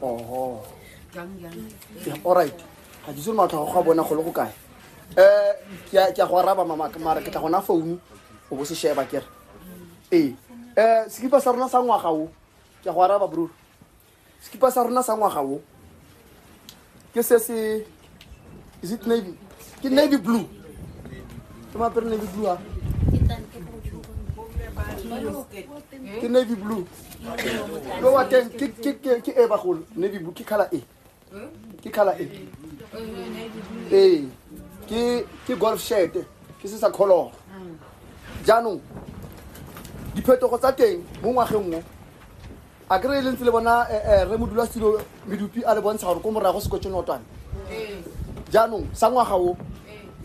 oho alright ga ke itse le matlho go a bona go le go kae um ke a go araba mamaka mara ke tla gona founu o bo se sheba kere ee um sekipa sa rona sa ngwaga o ke a go araba brur sekipa sa rona sa ngwaga o ke se se is it navy ke navy blue ke maapere navy blue a ke navy blue lo wa teng ke ke ke ke e bagolo navy blue ke khala e ke khala e ee ke ke golf shirt ke se sa kholoro jaanong diphetogo tsa teng mo ngwageng mo a kry e lentse le bona eh, eh, re modula selo medupi a le bontsha gore ko morago se kwetse notwane jaanong sa ngwaga o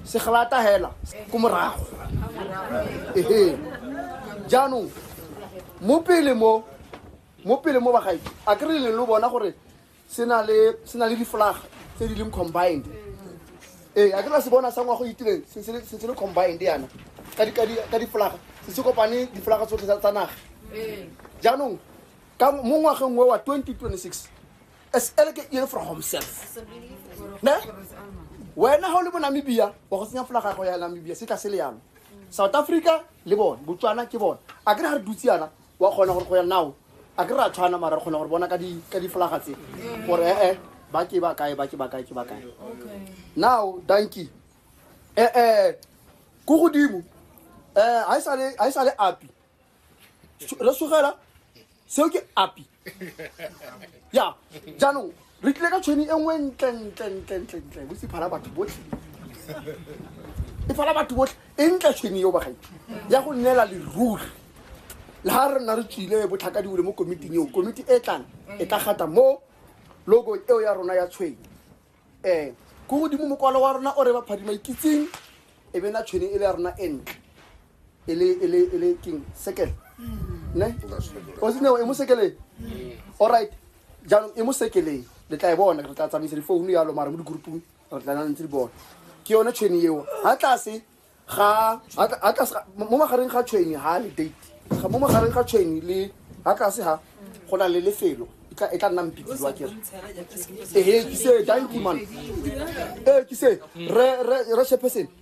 se glata hela ko morago ehe jaanong mo pele mo mo pele mo bagae a kry le lo bona gore se na le difolaga tse di leng combined ee a ke na se bona sa ngwago itireng se se le combined yana ka difolaga se se kopane difolaga tsotlhe tsa naga jaanong ka mo ngwageng o wa 2026 as eleke ere for homself ne wena ga o le bo namibia wa go tsenya folaga gago ya namibia se tla se le yalo south africa le bone botswana ke bone a kere ga re dutse yana wa kgona gore go ya nao a ke ra tshwana mara re kgona gore bona ka difolaga tse gore ee ba ke ba kae ba ke ba kae ke ba kae now danki ee ko godimo um ga e sale api re sogela seo ke api ya jaanong re tlile ka tshweni e nngwe ntlentlentlentlentlentle botse phala batho botlhe e phala batho botlhe e ntle tshweni eo bagaitho ya go neela leruri le ga re nna re tswile botlhaka diwele mo komiting eo komiti e tlang e tla gata mo logo eo ya rona ya tshweng um ko godimo mokwalo wa rona o re baphadima ikitseng e be na tshwene e le ya rona e ntle e le e le e le king sekele ne o sene e mo sekeleng all right jaanong e mo sekeleng le tla e bona re tla tsamaisa difounu yalo mara mo digroupong re tla na ntse di bona ke yone tshweni eo ha tlase ga ha tla- ha tlase ga- mo magareng ga tshweni ha le date Ga- mo magareng ga tshweni le ha tlase ha go na le lefelo e tla- e tla nna mpitsiwa kere ehe ke se danki man ee ke se re re re shepheseng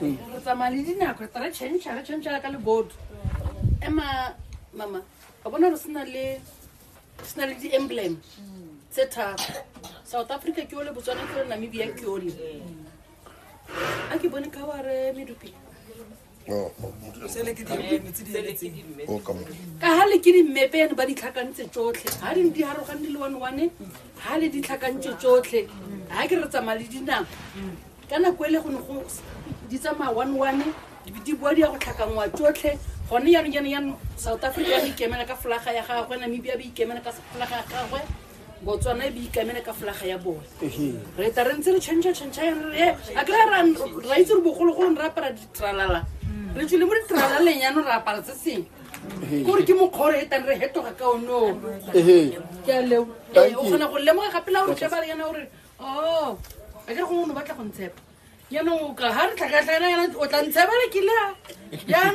re tsamaya le dinako re tara change re change ka le board ema mama ka bona re sena le sena le di emblem tse tharo south africa ke ole botswana ke ole namibia ke ole a ke bone ka wa re medupi Oh, oh, sele ke dimeme tse di eletseng oh, ka mo. ka ha le ke dimmepe ene ba di tlhakantse tsotlhe ha di di harogane le one one ha le di tlhakantse tsotlhe ha ke re tsamaya le dinako ka nako ele go ne go di tsamaya one one di boa di ya go tlhakanngwa tsotlhe gone yanong yanong yanong south africa ya ikemela ka folaga ya gagwe namibia ba ikemela ka folaga ya gagwe botswana e beikamele ka folaga ya bone re ta re ntse re change change eh, a kry ra itse re bogologolong re apara ditralala re tswile mo ditralaleng yanong re apara se seng kore ke mokgore e tang re hetoga ka onoo ke a leo eh, o kgona go lemoga gape la gore tle ba le yana gore oh a ke re gongwe o ne o batla go ntshepa jaanong ga re tlhakatlhakana yana o tla ntshebela ke la jaanong